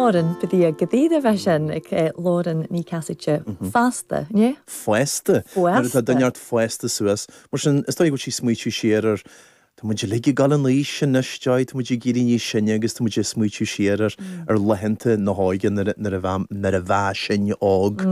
Árann, go dtí a go dtí a bheith sin ag Lauren Ní Chasaide, fásta, ní? Fásta, nuair atá duine ort fásta suas. Mar sin, is dóigh go bhfuil sí ag smaoitiú siar ar, tá muid uilig ag dul in aois anois, Joy, tá muid ag éirí níos sine agus tá muid ag smaoitiú siar ar, ar laethanta na hóige nuair a, nuair a bheam, nuair a bha sinn óg.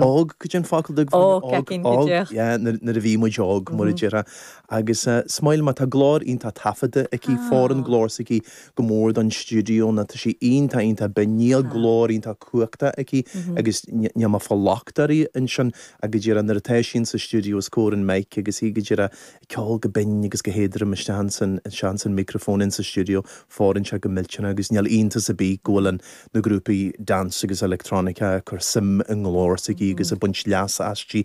Óg, goidé an focal dubh? Óg, óg, óg, óg, óg, yeah, nuair, nuair a bhí muid óg, mar a déarfá. Agus, eh, Smile, má tá glór iontach taifeadta aici, fóireann glór s'aici, go mór don stiúideo nó tá sí iontach, iontach binn. Níl glór iontach cumhachtach aici agus níl mé ag fáil locht uirthi ansin ach go díreach nuair atá sí sa stiúideo os comhair an mic agus í go díreach ag ceol go binn agus go héadrom isteach ins an micreafón in sa stiúideo fóireann sé go millteanach agus níl iontas ar bith go bhfuil na grúpaí dance agus electronica ag cur suim i nglór s'aici agus ag baint leasa aisti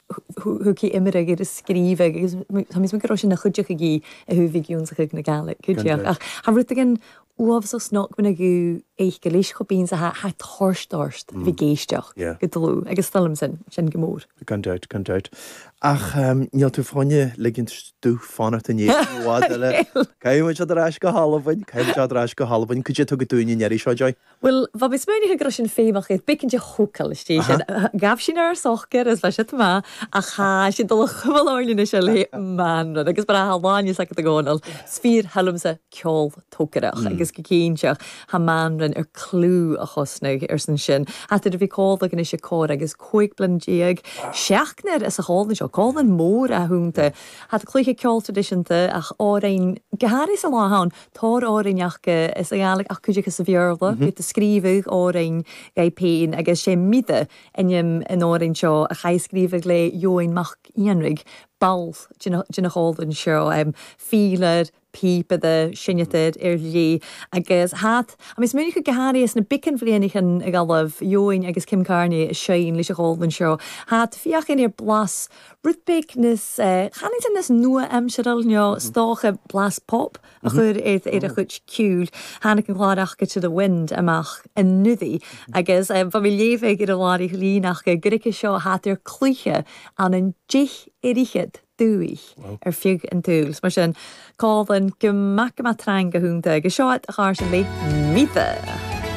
Thuigfidh Imre gur is scríbe agus táimid gu robh sin na chuideachadh í a thuaibhígiún sa chuimhne geala, cuideachd. Ach tha rudeigin uabhasach snog muna gcuid éisc anois chomh binn 's a tha e toirt ort a bheith ag éisteacht go dlúth agus 's toil leamsa sin go mór. Gan dabht, gan dabht. Ach níl tú fáinne ligint domh fanacht inné i bhfad eile. Caithfidh muid siad ar ais go hAlbain, caithfidh muid siad ar ais go hAlbain. Goidé atá agat dúinn an iarraidh seo, Joy? Bhuel, bha mé smaoineachadh go raibh sin feidhmeach air beagan de shocair às dèidh sin. Ghabh sin air socair, is bha siad maith, ach tha siad dul a chuimil orainn anois ar le Mànran, agus mar atá a lán fhios agat, a Dhomhnaill, 's fìor thoil leamsa ceol tócaireach, agus gu cinnteach, tha Mànran air cliù a chosnadh ar son sin, ach nuair a bhí còmhla a anois airson còrr agus cúig bliana déag, seachdnar anns a' chòmhlan seo, còmhlan mòr athúnta, tha cluiche ceol tradisiúnta, ach orainn, go hairí sa lá ann, tòrr òrain aca sa Ghàidhlig ach cuid acu sa Bhéarla, tha iad a' sgrìobhadh òrain dhaibh pèin agus sé Mire ainm an òrain seo a chaidh scríobhadh le Eoin MacEanraig, ball de a' chòmhlain seo, fidhleir, pìobaire, seinneadair ar dhlí agus hat agus muid gu h-àraidh sna beagan bhliadhnaichean in agallamh Eoin agus Kim Carnie a sheinn leis an chòmhlan seo, tha iad feuchainn ri blas Rithbeigh nios tanaí de, nios nua-aimseartha leo, is dócha, blas pop a chur ar a chuid ceoil. Tháinig an clár Off Kid To The Wind amach anuraidh agus ba mé léamh ag Iarla Mhary Ghlínach gur aige seo a shaothar cluiche an an dith oiread dúigh ar fiodh an tsúil. Is mar sin, colin, go maith go maith tráinnge, fúnta agus seo at a ghairtear Lake Meadh!